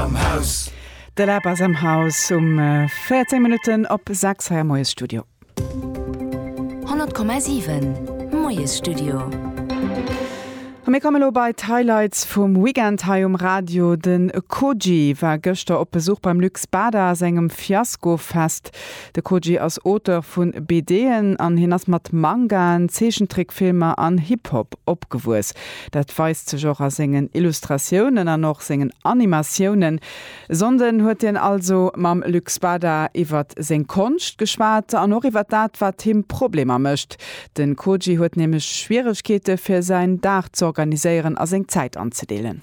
am Haus. De Lab ass am Haus um 14 Minutten op 6 hei am Moiesstudio. 100,7 Moiesstudio. A mir komme lo bei d'Highlights vum Weekend hei um Radio. De Koji war gëschter op Besuch beim Luc Spada a sengem Fiasko-Fest. De Koji ass Auteur vu BDen an hien ass mat Mangaen, Zeechentrickfilmer an Hip-Hop opgewuess. Dat weist sech och a sengen Illustratiounen an och sengen Animatiounen. E Sonnden huet hien also mam Luc Spada iwwert seng Konscht geschwat an och iwwert dat, wat him Problemer mécht. De Koji huet nämlech Schwieregkeete fir säin Dag z'organiséieren a seng Zäit anzedeelen.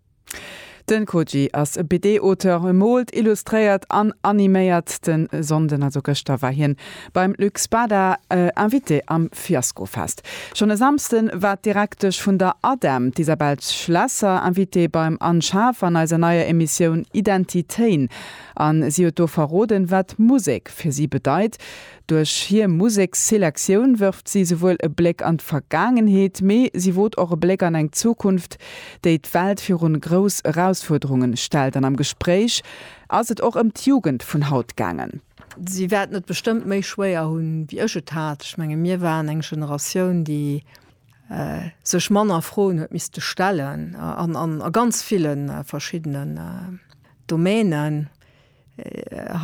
Den Koji ass e BD-Auteur, e moolt, illustréiert an animéiert. Den Sonnden, also gëschter, war hien beim Luc Spada Invité am Fiaskofest. Schonn e Samsden war d'Direktesch vun der ADEM, d'Isabelle Schlesser, Invitée beim Anne Schaaf an eiser neier Emissioun Identitéin an si huet do verroden wat Musek fir si bedeit. Duerch hir Museksselektioun wërft si souwuel e Bléck an d'Vergaangenheet, mee si wot och e Bléck an eng Zukunft, déi d'Welt virun grouss Erausfuerderungen stellt. An am Gespréich ass et och ëm d'Jugend vun haut gaangen. Si wäerten et bestëmmt méi schwéier hunn, wéi ech et hat. Ech mengen, mir waren eng Generatioun, déi sech manner Froen huet misste stellen, a ganz ville verschiddenen Domänen.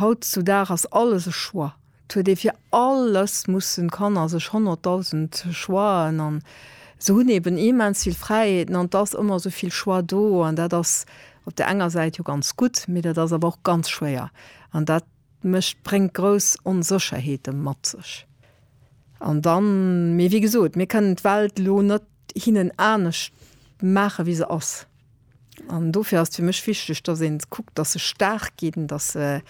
Haut zu Dag ass alles e Choix. Et huet ee fir alles mussen d'Kanner sech honnertdausend Choixen an se hunn eben immens vill Fräiheeten an et ass ëmmer esou vill Choix do an dat ass op der enger Säit jo ganz gutt, mee dat ass awer och ganz schwéier an dat mécht bréngt grouss Onsécherheete mat sech. An dann, mee wéi gesot, mir kënnen d'Welt elo net hinnen anescht maachen, wéi se ass. An dofir ass et fir mech wichteg, dass ee kuckt, dass se staark ginn, dass se,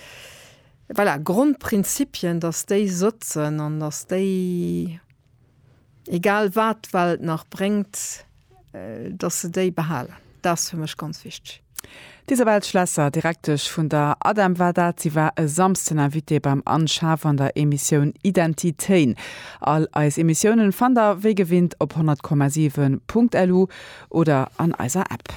voilà, Grondprinzipien, dass déi sëtzen an dass déi, egal wat d'Welt nach bréngt, dass se déi behalen. Dat ass fir mech ganz wichteg. D'Isabelle Schlesser, Direktesch vun der ADEM war dat. Si war e Samsden Invitée beim Anne Schaaf an der Emissioun Identitéin. All eis Emissiounen fannt der wéi gewinnt op 100,7.lu oder an eiser App.